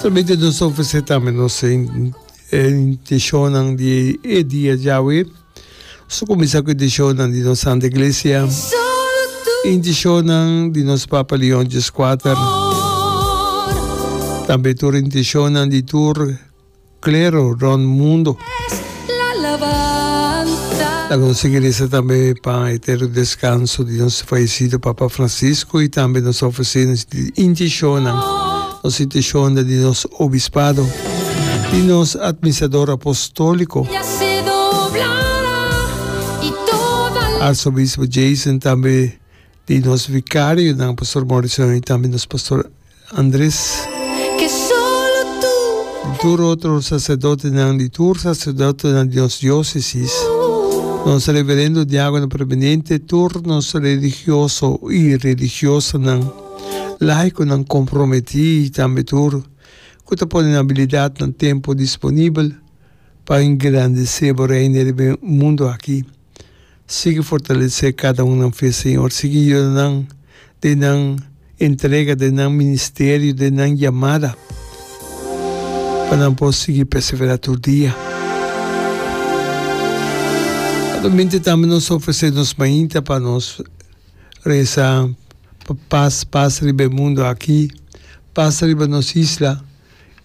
Solamente nos ta ofrecer tambe nos intencionnan di e dia djawe. Nos ta cuminsa cu e intencionnan di nos Santa Iglesia, e intencionnan di nos Papa Leon Djis Kuater, tambe tur e intencionnan di tur Klero rònt mundu. Laga nos sigui resa tambe pa e etero deskanso di nos fayesido Papa Fransisku i tambe nos ofresende di intishonnan, nos intishonnan di nos obispado i nos atministrador apostóliko, Arsobispo Jason tambe. di nos vikarionan, Pastor Morrison i tambe nos Pastor Andres. Tur otro saserdotenan di tur saserdotenan di nos diosesis, nos reverendo diagono preminente, tur nos religioso i religiosanan, laikonan komprometí i tambe tur ku ta pone nan abilidatnan, tempu disponibel pa engrandesé bo Reino riba e mundu aki. Sigui fortalesé kada un nan fe, Señor. Sigui yuda nan den nan entrega, den nan ministerio, den nan yamada, pa nan por sigui perseverá tur dia. Anualmente tambe nos ofresé nos mainta pa nos reza pa pas, pas riba e mundo aki, pas riba nos isla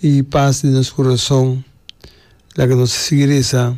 i pas den nos corazon. Laga nos a sigui reza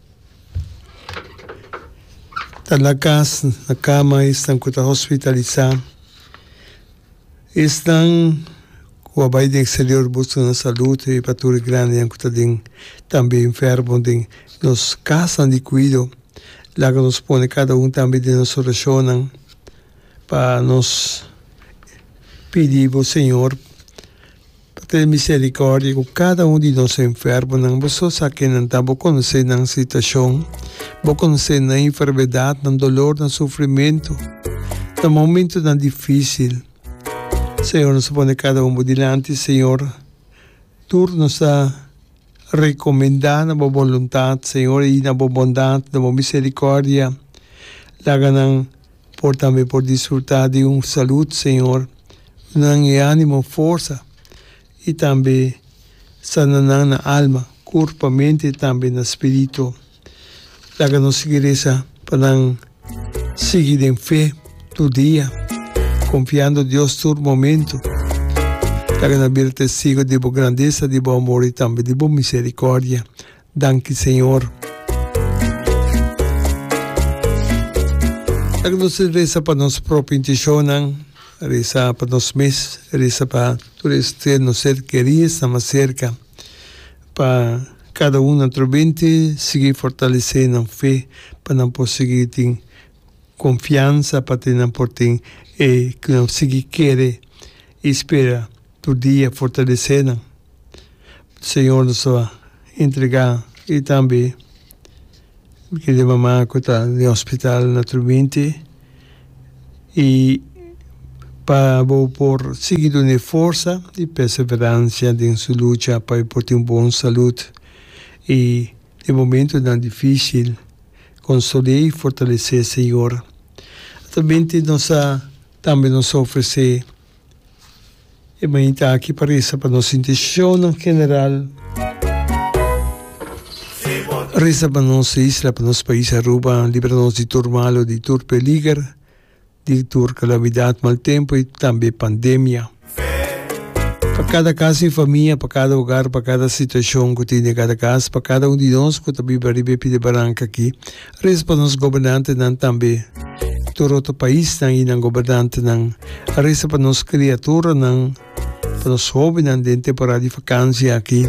Ta na cas, na cama esnan cu ta hospitalisá. Esnan cu a bai den exterior busca nan salud y pa tur e grandenan cu ta den tambe enfermo den nos casnan di cuido. Laga nos pone cada un tambe den nos oracionnan pa nos pidi bo Señor Ta tene misericordia cu cada un di nos enfermonan. Bo so sa kenan ta. Bo conoce nan situacion. Bo conoce nan enfermedad, nan dolor, nan sufrimento, nan momentonan dificil. Señor, nos ta pone cada un bo dilanti, Señor. Tur nos ta recomenda na bo boluntad, Señor, y na bo bondad, na bo misericordia. Laga nan. Por tambe por disfruta di un salut Señor nan e animo, forsa y tambe sana nan na alma, curpa, mente y tambe na spirito. Laga nos sigui reza pa nan sigui den fe tur dia, confiando Dios tur momento. Laga nan bira testigo di bo grandeza, di bo amor y tambe di bo misericordia. Danki Señor. Nan ke nos tin resa pa nos propio intencionnan, resa pa nos mes, resa pa tur e ser nos ser keri esnan mas serka, pa kada un atrobente sigui fortalesé nan fe pa nan por sigui tin konfiansa pa te nan por tin e ke nan sigui kere i spera tur dia fortalesé nan. Señor nos ta entrega y tambe kende di mama cu ta den hospital na Trubinte y pa bo por sigui dun'e forsa y perseverancia den su lucha pa e por tin bon salud y den momentonan dificil consol'e y fortalece'e Señor. Tambe nos ta tambe nos ta ofrece. E mainta aki pa risa pa nos intenshonan general. Risa pa nos isla, pa nos pais Aruba, libra nos di tur malo, di tur peliger, di tur kalamidat, mal tempo i tambe pandemia. Pa kada kas i famia, pa kada ogar, pa kada situashon ku tin den kada kas, pa kada un di nos ku ta biba riba e pide baranka aki, Reza pa nos gobernantenan tambe, tur otro paisnan i nan gobernantenan. Reza pa nos kriaturanan, pa nos hóbennan den temporada di vakansia aki.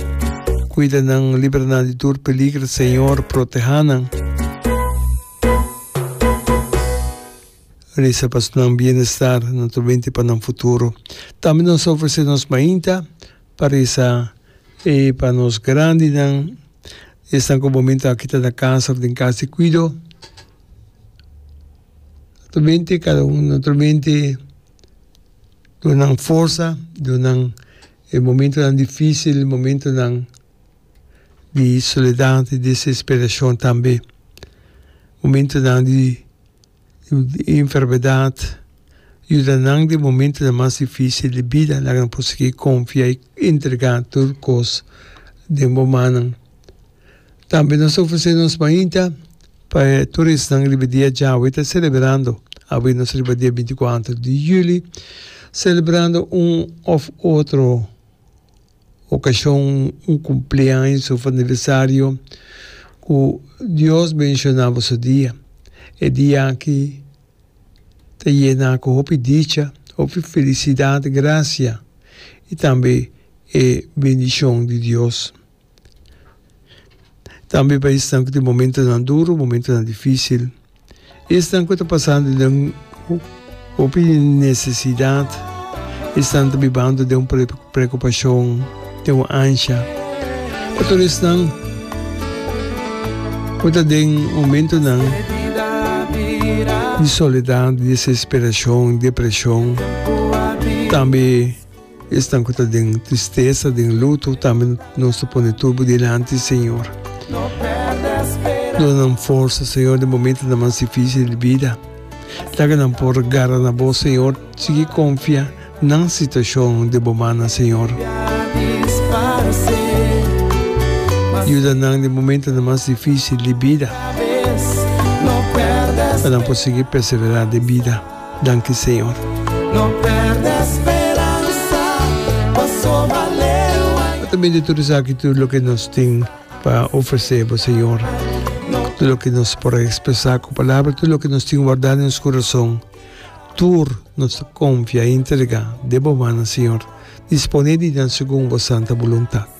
Kuida nan, libra nan di tur peliger, Señor, protehá nan. Reza pa nan bienestar, nan turmenti pa nan futuro. Tambe nos ta ofresé nos mainta. Pa risa i pa nos grandinan, esnan ku bo menta a kita na kanser den kas di kuido, ta mente kada un di noto mente dunan forsa, dunan e momentonan difisil, momentonan di soledat, di desesperashon tambe, momentonan di. i enfermedat yuda nan den momentonan mas difisil di bida laga nan por sigui konfia i entregá tur kos den bo mannan. Tambe nos ta ofresé nos mainta pa e tur esnan riba dia djawe ta selebrando. Awe nos riba dia binti kuater di yüli selebrando un òf otro. okashon, un kumpleaños òf aniversario ku Dios menshoná bo su dia. E dia aki ta yená ku hopi dicha, hopi felisidat, grasia i tambe e bendishon di Dios. Tambe pa esnan ku tin momentunan duru, momentunan difísil. Esnan ku ta pasando den hopi nesesidat, esnan ta bibando den un preokupashon, den un ansha. Pa tur esnan ku ta den momentunan di soledat, desesperashon, depreshon, tambe. Esnan ku ta den tristesa, den luto, tambe nos ta pone turbo dilanti, Señor. Duna nan forsa, Señor, den momentonan mas difisil di bida. Laga nan por gara na Bo, Señor, sigui konfia nan situashon den Bo mannan, Señor. Yuda nan den momentonan mas difisil di bida pa nan por sigui perseverá den bida. Danki Señor. Bo ta bende tur esaki tur loke nos tin pa ofresé Bo Señor. Tur loke nos por a ekspresá ku palabra, tur loke nos tin wardá den nos kurason, tur nos ta konfia i entregá den Bo mannan Señor, disponé di duna segun Bo santa boluntat.